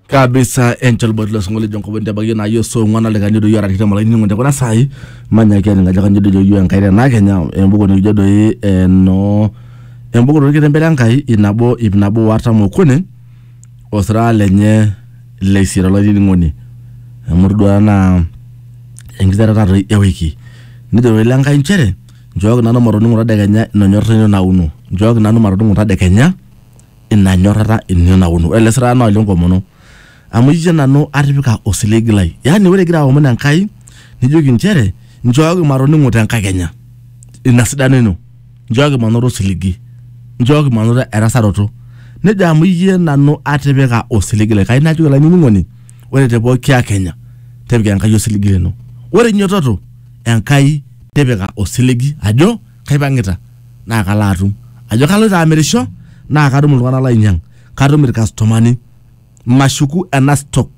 kabisa enchol boti losingolio lijo nkobon tebagie naa yo so ng'wana likanyo doi orarikita malai nining'o tekuna saai manyaki aning ajo kanyo dojo yo enkai tenaa kenya embuku nikijo doi eno embuku torkitembele enkai inabo ip nabo o artam okuni osira lenye leisiet olainining'oni amu todua naa enkiterata toi ewiki nejo wele enkai inchere nchooki nanu matoning'o tadekenya inonyorr ino nauno nchooki nanu matoning'o tadekenya ina nyorrata ino naono ore ele sirata naa ole nkomono amu ijio nanu atipika osiligi lai yaani ore igira aomon enkai nijoki inchere nchooki matoning'o te nkakenya ina sidano ino nchooki manoto osiligi nchooki manoto erasaroto nejo amu iyie nanu atipika osiligi lai kai najoki olainining'oni ore te pooki akenya tipika enkai osiligi lino ore inyototo enkai tipika osiligi ajo kaipang'ita naa kalo atum ajo kaloito amirisho naa katum iltung'anak lainyang katum irkastomani mashuku ena stock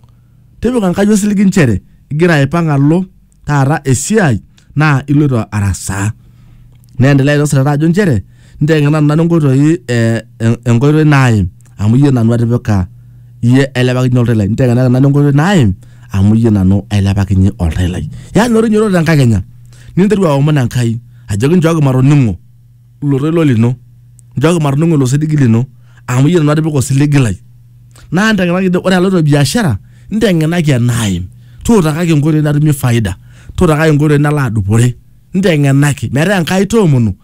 tipika enkai osiligi nchere igira aipang alo taata esiai naa iloito arasaa neendelea ilo sirata ajo nchere nteng'ena nanu inkoitoi eh, en- enkoitoi naim amu iyie nanu atipika iyie ailepakinye oltau lai ntekenaka nanu enkoitoi naim amu iyie nanu ailepakinye oltau lai yaani ore inyototo tenkakenya ninteru aomon enkai ajoki nchooki matoning'o ilo toilo lino nchooki matoning'o ilo siligi lino amu iyie nanu atipika osiligi lai naa ntekenaki ore aloito biashara ntekenaki enaim tuutakaki enkoitoi natumie faida tuutakaki enkoitoi nalo adupore ntekenaki metaa enkai toomonu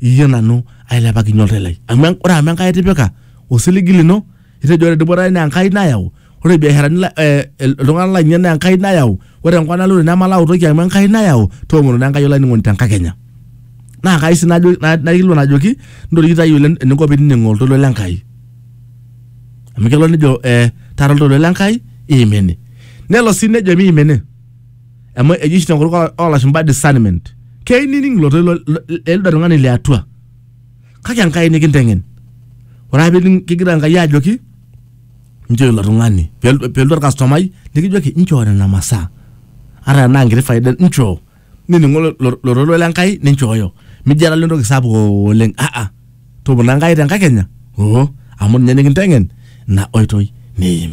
iyie nanu ailepakinye oltau lai amu en- ore amu enkai itipika osiligi lino itejo ore dupoto ai naa enkai nayau ore biasharani la- eh, il- iltung'anak lainei naa enkai nayau ore enkop naloito nemalau toki amu enkai nayau toomonu naa enkai olainining'oni tenkakenya naa kai sii najo- na- naikilikuan ajoki ntoriki tayiolo en- eninko pinining'oo oltoilo le Enkai amu kelo nejo eh, taara oltoilo le Enkai iimini nelo sii nejo miimini amu eji oshi tenkutuk oo- oolashumba discernment keyieu nining ilo toilo l- l- elde tung'ani le atua kake enkai nikinteng'en ore ake pining kegira enkai ajoki nchoo ilo tung'ani Pel- pelotu orkastomai nikijoki nchoo nena masaa ata enaa nkiti faida nchoo nining'u lo- lo- lo toilo le nkai ninchooyo mijo alo entoki sapuk oleng aa topona enkai te nkakenya oo amu ninye nikinteng'en ina oitoi niim